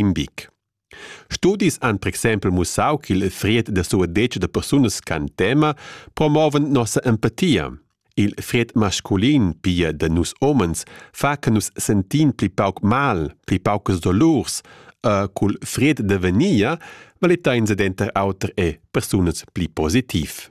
in bic. Studis han per exempel mussau ch'il fried da suadetsch da persunas ch'han tema promovan nossa empatia. Il fried masculin, pia da nus homens, fa che nus sentin pli pauc mal, pli paucas dolurs, e cul fried da venia valita in denter auter e persunas pli positiv.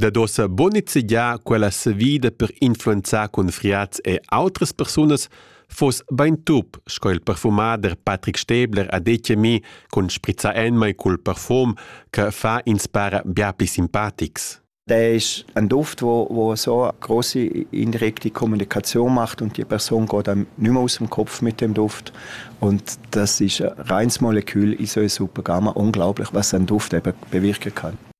Dad ossa buca nizzegiar quella savida per influenzar confriats e outras persunas fuss bein tup, sco il perfumader Patrick Stäbler ha detg a mi cun sprizzar enmai cul perfum che fa ins para bia pli simpatics. Der ist ein Duft, wo, wo so eine große indirekte Kommunikation macht und die Person geht einem nicht mehr aus dem Kopf mit dem Duft. Und das ist ein reines Molekül in so einer super Gamma. Unglaublich, was ein Duft eben bewirken kann.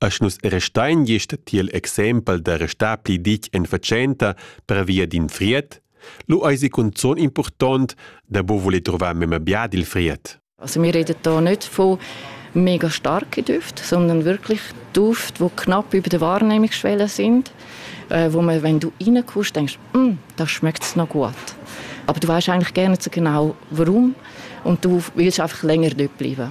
Esch nus restein gist tiel exempel da restar pli ditg en fatschenta pervia d'in fried, lu eisi cunzun impurtont da buc voler truvar memia bia dil fried. Also wir reden da nicht von mega starke Düfte, sondern wirklich Duft, die knapp über der Wahrnehmungsschwelle sind, äh, wo man, wenn du reinkommst, denkst, mm, das schmeckt es noch gut. Aber du weißt eigentlich gerne zu genau, warum und du willst einfach länger dort bleiben.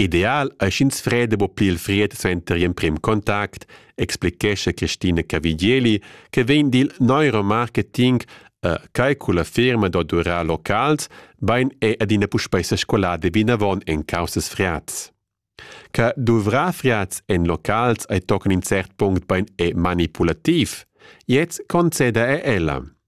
Ideal ei sch'ins freda buca pli il fried suenter gl'emprem contact, explichescha Christina Cavigieli che vegn dil neuromarketing e quei culla firma da durar locals bein è adina puspei sescolada vinavon en caussas friads. Che duvrar friads en locals ei tochen in cert punct bein è manipulativ. Jetzt conceda er ella.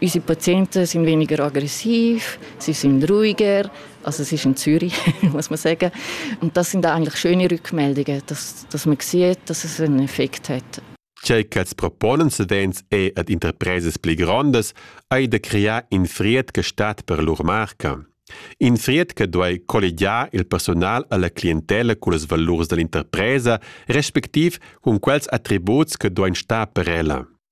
Unsere Patienten sind weniger aggressiv, sie sind ruhiger, also es ist in Zürich, muss man sagen. Und das sind eigentlich schöne Rückmeldungen, dass, dass man sieht, dass es einen Effekt hat. Tgei ch'els proponen savens è ad interpresas pli grondas ei da crear in frietga stat per lur marca. In frietga duei colligiar il personal alla clientela cullas valurs dall'interpresa, respectiv cun quels attributs che duein star per ella.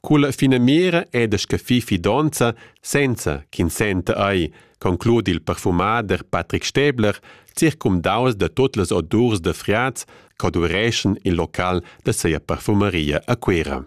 Culla finamira è da scaffir fidonza senza ch'in senta ei, concludi il perfumader Patrick Stäbler, circumdaus da tut las odurs da friats ch'odureschan il local da sia parfumaria a Cuera.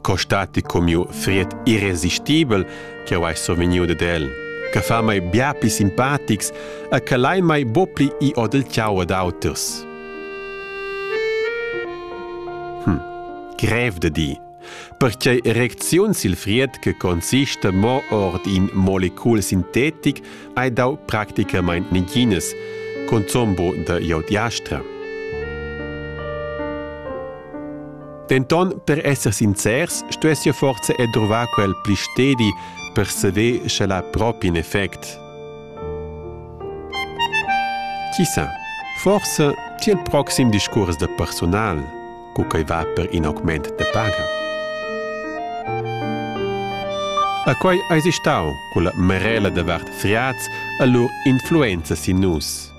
Costati comiu fried irresistibel che ho ei sovegniu ded el, che fa mai bia pli simpatics e che lai mai bo pli i odel ciau ad auters. Hm, grev de di. Perchei reacziun sil fried che consista mo ord in molecul sintetic hai dau practicamain neginas, consombo da Iodiastra. Denton, per esser sincers, stuess forza e trovar quel pli stedi per seder sche la propi in effect. Chi sa, forse tiel proxim discurs de personal. co quei va per in augment de paga. A quei eis stau quella merela de vart Friaz a lur influenza sin nus.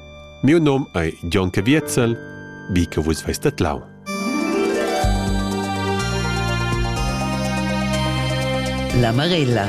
Miu nom ei John Caviezel, wie che vus veist dat lau. La Marella